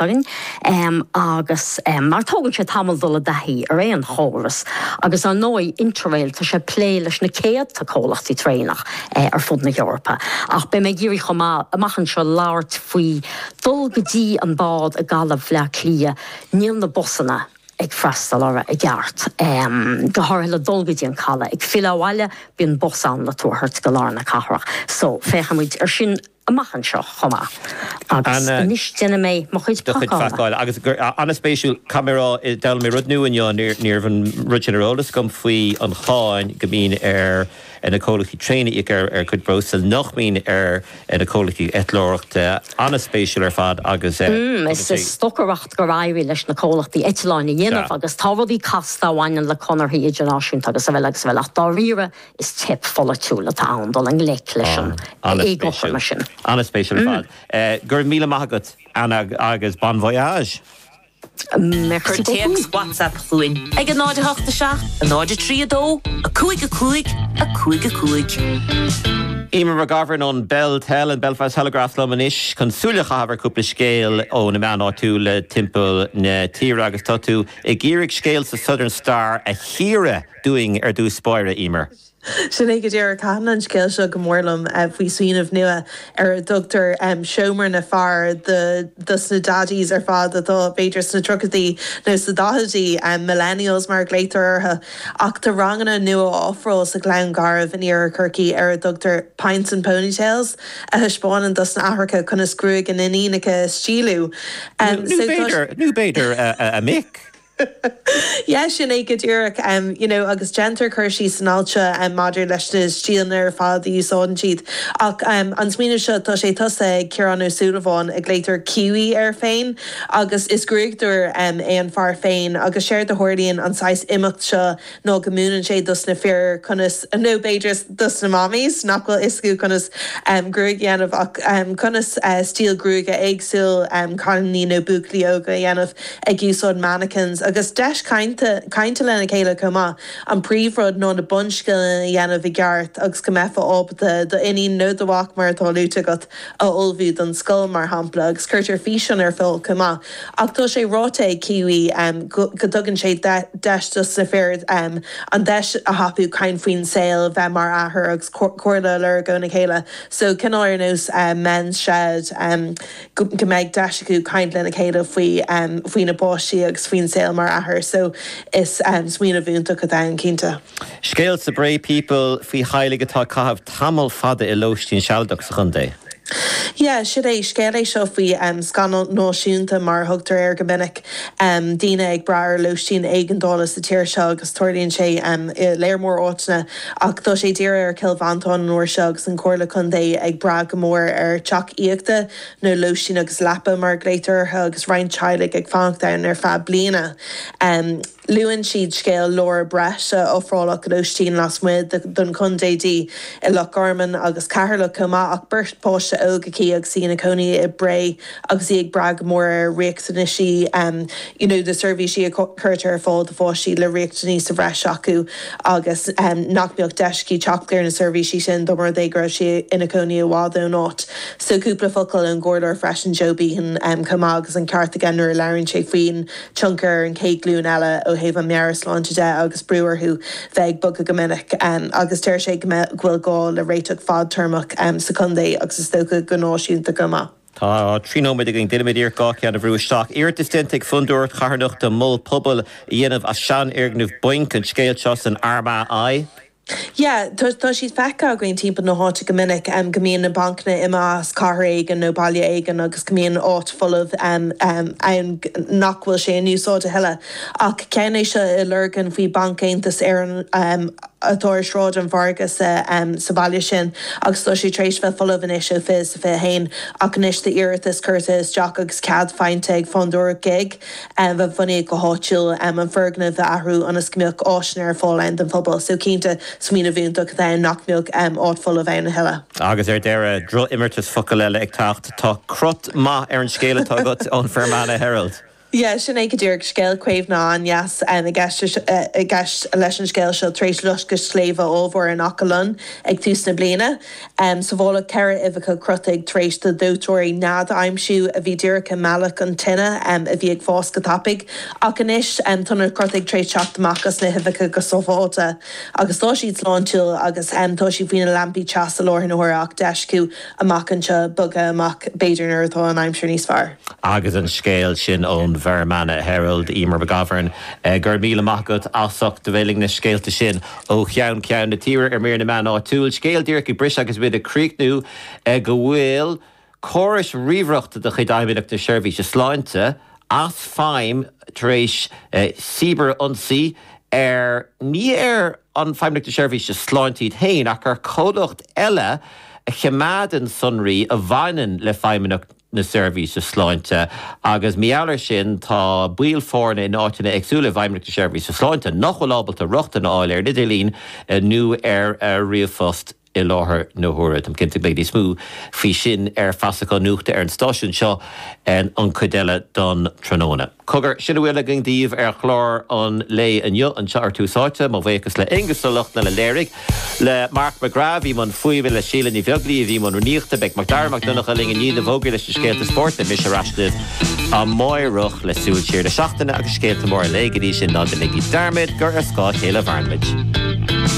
agus mar tógann sé tamall dul i dtaithí ar aon chóras agus ar ndóigh Interrail tá sé ag plé leis na céadta comhlachtaí traenach ar fud na hEorpa ach beidh mé ag iarraidh chomh maith amach anseo labhairt faoi dul go dtí an bád i gCaladh Bhleá Cliath níl na busanna ag freastal orthu i gceart go háirithe le dul go dtí an caladh ag filleadh abhaile bíonn bus ann le tú a thabhairt go lár na cathrach so féachfaimid ar sin. amach anseo chomh maith. Agus anois déanfaidh mé mo chuid pacála. Agus an-spéisiúil, caithfidh mé a rá, d'fhoghlaim mé rud nua inniu, níorbh an rud sin ar eolas agam faoi an cháin go mbíonn ar na comhlachtaí traenach a íoc ar a gcuid breosla nach mbíonn ar na comhlachtaí eitleoireachta. An-spéisiúil ar fad agus is stocaireacht gur éirigh leis na comhlachtaí eitleáin a dhéanamh agus tá rudaí casta a bhaineann le conarthaí idirnáisiúnta agus a bhfuil is a bhfuil ach dáiríre Is teip pholaitiúil atá ann dul i ngleic leis an éagothroime sin. Ana-spéisiúil. Ana-spéisiúil ar fad. Go raibh míle maith agat, Anna, agus bon voyage! Cuir téacs WhatsApp chugainn ag 0 8 7 0 3 2 5 5 5 5. Eimear McGovern ón Bel Tel, an Belfast Telegraph, liom anois chun súil a chaitheamh ar chúpla scéal ó na meáin áitiúla timpeall na tíre agus tá tú ag iarraidh scéal sa Southern Star a chíoradh. dúinn ar dtús báire, Eimear. Sin é go díreach. Thaitin an scéal seo go mór liom faoi smaoineamh nua ar a dtugtar seomra na bhfear do dos na daddies ar fad atá b'fhéidir sna tríochaidí nó sna daichidí, millennials mar a ghlaotar orthu. Ach tá ranganna nua á ofráil sa Ghleann Garbh in Iarthar Chorcaí ar a dtugtar 'Pints and Ponytails' a thaispeánann dos na aithreacha conas gruaig a n-iníonacha a stíliú. Nó b'fhéidir, a mic. Yes, sin é go díreach. You know, agus déantar cur síos san alt seo maidir leis na stíleanna ar fad a úsáideann siad. Ach an smaoineamh seo, tá sé tosaithe ag Ciarán Ó Súilleabháin, a ghlaotar Kiwi air féin, agus is gruaigeadóir é an fear féin, agus séard a tharlaíonn, an saghas imeacht seo nó go múineann sé dos na fir conas, nó b'fhéidir dos na mammies, nach bhfuil fhios acu conas gruaig a dhéanamh, ach conas stíl gruaige éagsúil cailíní nó buachaillí óga a dhéanamh ag úsáid mannequins, agus deis cainte, cainte lena chéile chomh maith, an príomhrud nó na bunscileanna a dhéanamh i gceart agus go mbeifeá ábalta do iníon nó do mhac, mar atá luaite agat, a ullmhú don scoil, mar shampla, agus cuirtear físeán ar fáil chomh maith. Ach tá sé ráite ag Kiwi go dtugann sé deis dos na fir an deis a thapú caint faoin saol, bheith mar athair agus comhairle a lorg óna chéile. So, cineál ar nós Men's Shed, em, go mbeidh deis acu caint lena chéile faoi, faoina bpáistí agus faoin saol mar athair. So, is smaoineamh iontach atá ann, cinnte. Scéal sa Bray People faoi theaghlaigh atá ag caitheamh tamall fada i lóistín sealadach sa chontae. Yeah, sin é. Scéal é seo faoi scannal náisiúnta, mar a thugtar air go minic, daoine ag brath ar lóistín éigeandála sa tír seo agus tarlaíonn sé i léar mór áiteanna ach tá sé dírithe ar Chill Mhantáin an uair seo agus an Chomhairle Contae ag brath go mór ar teach aíochta nó lóistín agus leaba mar a ghlaotar orthu agus roinnt teaghlaigh ag fanacht ann ar feadh bliana. Luann siad scéal Laura Breis a ofráladh lóistín lasmuigh den chontae di i Loch Garman agus Ceatharlach chomh maith, ach beirt páiste óg aici agus í ina cónaí i Bré agus í ag brath go mór ar riachtanaisí um nó na seirbhísí a chuirtear ar fáil do pháistí le riachtanaisí sa bhreis acu agus nach mbeadh deis aici teacht ar na seirbhísí sin dá mba rud é go raibh sí ina cónaí i bhfad ón áit. So cúpla focal ón gComhairleoir freisin, Joe Behan, chomh maith agus an ceart aige nuair a labhraíonn sé faoin tionchar ar an chéad ghlúin eile ó thaobh an mheabhairshláinte de agus brú orthu bheith ag bogadh go minic, agus deir sé go bhfuil gá le réiteach fadtéarmach sa chontae agus is dócha go náisiúnta chomh maith. Tá trí nóiméad againn. Déanaimid iarracht gach ceann a bhrú isteach. Iarratas déanta ag Fondúireacht Charthanachta Mol Pobail a dhéanamh as seanfhoirgneamh bainc, an scéal seo san Armagh I. Yeah, tá siad feicthe againn timpeall na háite go minic, go mbíonn na bancanna imithe as cathair éigin nó baile éigin agus go mbíonn áit folamh ann nach bhfuil sé in úsáid a thuilleadh. Ach ceann é seo i Lurgan faoi Bhanc Aontas Éireann atá ar Shráid an Mhargaidh sa bhaile sin agus tá sé tar éis bheith folamh anois ó fiche fiche haon ach anois tá iarratas curtha isteach agus cead faighte ag Fondúireacht gig a bhunaíodh go háitiúil, an foirgneamh a athrú ionas go mbeadh áiseanna ar fáil ann don phobal. So cinnte, smaoineamh iontach atá ann nach mbeadh áit folamh ann a thuilleadh. Agus ar deireadh, crot imeartas focal eile ag teacht, tá crot maith ar an scéal atá agat ón Fermanagh Herald. Yeah, sin é go díreach, scéal caomhnaithe an-deas i gceist leis an scéal seo, tar éis loisceadh sléibhe ollmhóire in Achadh Lon ag tús na bliana. Sabháladh ceithre uibheacha crotaigh tar éis do dhóiteoirí nead a aimsiú a bhí díreach i mbealach an tine a bhí ag fás go tapaidh. Ach anois, tá na crotaigh tréis teacht amach as na huibheacha go sábháilte, agus tá siad sláintiúil, agus tá siad faoi na lampaí teasa i láthair na huaire ach d'fheisciú amach anseo, bogadh amach, b'fhéidir, nuair atá an aimsir níos fearr. Agus an scéal sin ón bhFermanagh Herald, Emer McGovern, go raibh míle maith agat, as ucht do mheitheal na scéalta sin Ó cheann ceann na tíre ar mír na meán áitiúil. Scéal díreach ag briseadh agus muid ag críochnú go bhfuil córais ríomhaireachta de chuid Fheidhmeannacht na Seirbhíse Sláinte as feidhm tar éis cíbear-ionsaí ar, ní ar Fheidhmeannacht na Seirbhíse Sláinte iad féin, ach ar comhlacht eile a choimeádann sonraí a bhaineann le Feidhmeannacht. na seirbhíse sláinte, agus mar gheall air sin tá baill foirne in áiteanna éagsúla i bhFeidhmeannacht na Seirbhíse Sláinte nach bhfuil ábalta rochtain a fháil ar an idirlíon nó ar ríomhphost i láthair na huaire. Táim cinnte go mbeidh níos mó faoi sin ar feasacháin nuachta ar an stáisiún seo an chuid eile den tráthnóna. Cogar, sin a bhfuil againn daoibh ar chlár an lae inniu, anseo ar Tús Áite. Mo bhuíochas le Aonghus Ó Lochlainn a léirigh, le Mark McGrath a bhí i mbun fuaime, le Síle Ní Bheaglaoí a bhí i mbun riaracháin. Beidh Macdara Mac Donncha linn i ndiaidh na bhfógraí leis na scéalta spóirt, beidh mise ar ais libh amáireach le Súil Siar na Seachtaine agus scéalta móra an lae. Go dtí sin, ná deinigí dearmad gur ar scáth a chéile a mhaireann muid.